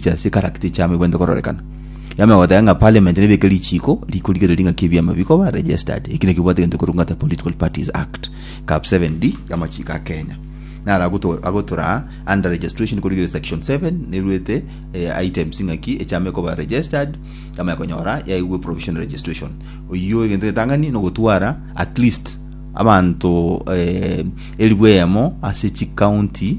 chia sikaragte chiamo ibwente kororekana. Yame goteba ng'a parliament nebeke richiiko rikorigereria ng'aki ebiama bikoba registered. Eki nekio bwate gento korwa ng'ata Political Parties Act, Cap 7D, y'amachiiko a Kenya. Naro agoto- agotoraa under registration korigereria section 7 neruete eh, items ng'aki echiama ekoba registered yamaya konyora yaigwe provisional registration. Oyio egento getang'ani nogotwara at least abanto eh, elifu eyemo ase chicounty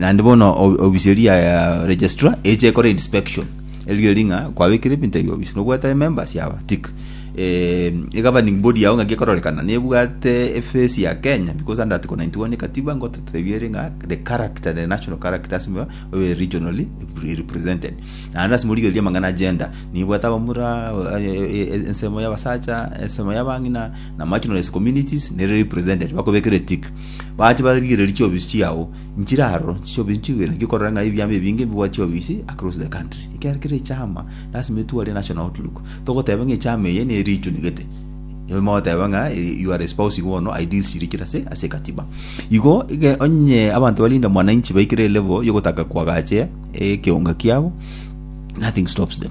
Naende bono o- ofisi eria ya registrar eche ekore inspection erigereria ng'a kwabekire ebinto ebio ofisi nobwate members yaba tick eh, egoverning body yao ng'aki ekororekana nebwate efesi ya kenya because under article 91 ekatiba ngotetebiere ng'a the character the national character lasima obe regionally represented naende lasima origererie amang'ana agenda nibwate abamura eh, eh, eh, ensemo y'abasacha ensemo y'abang'ina na marginalized communities nere represented bakobekere tick Bache barigererie chiofisi chiao nchire aroro, inche chiofisi nchigwere, ngikorere ng'a ebiama ebinge mbibwate chiofisi across the country. Ekero kera echaama, lasima etware enational outlook. Togoteba ng'a echaama eye ne region gete, nigo mogoteba ng'a eh, you are espousing bono ideals chiria chire ase ase ekatiba. Igo ege onye abanto balinda mwananchi baikire level yogotaka koagache ekeonga kiabo, nothing stops them.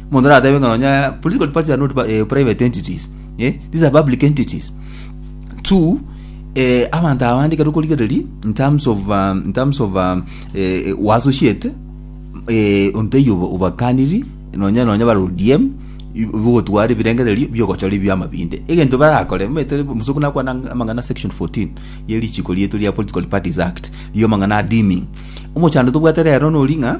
Omonto nateebe ng'a nonya political parties are not pa- eh, private entities. Eh, these are public entities. Two, eh, abanto abande ekero okorigereria in terms of um, in terms of um, eh, eh, uassociate eh, onteiyo obo- obakaniri nonya nonya bare ODM ibo- bigotwara ebirengererio biogochora ebiama binde egento barakore omanyete omosuku nakwana ang- amang'ana section 14 ye richiko rieto ria political parties act riria amang'ana adiming omochando tobwate rero nori ng'a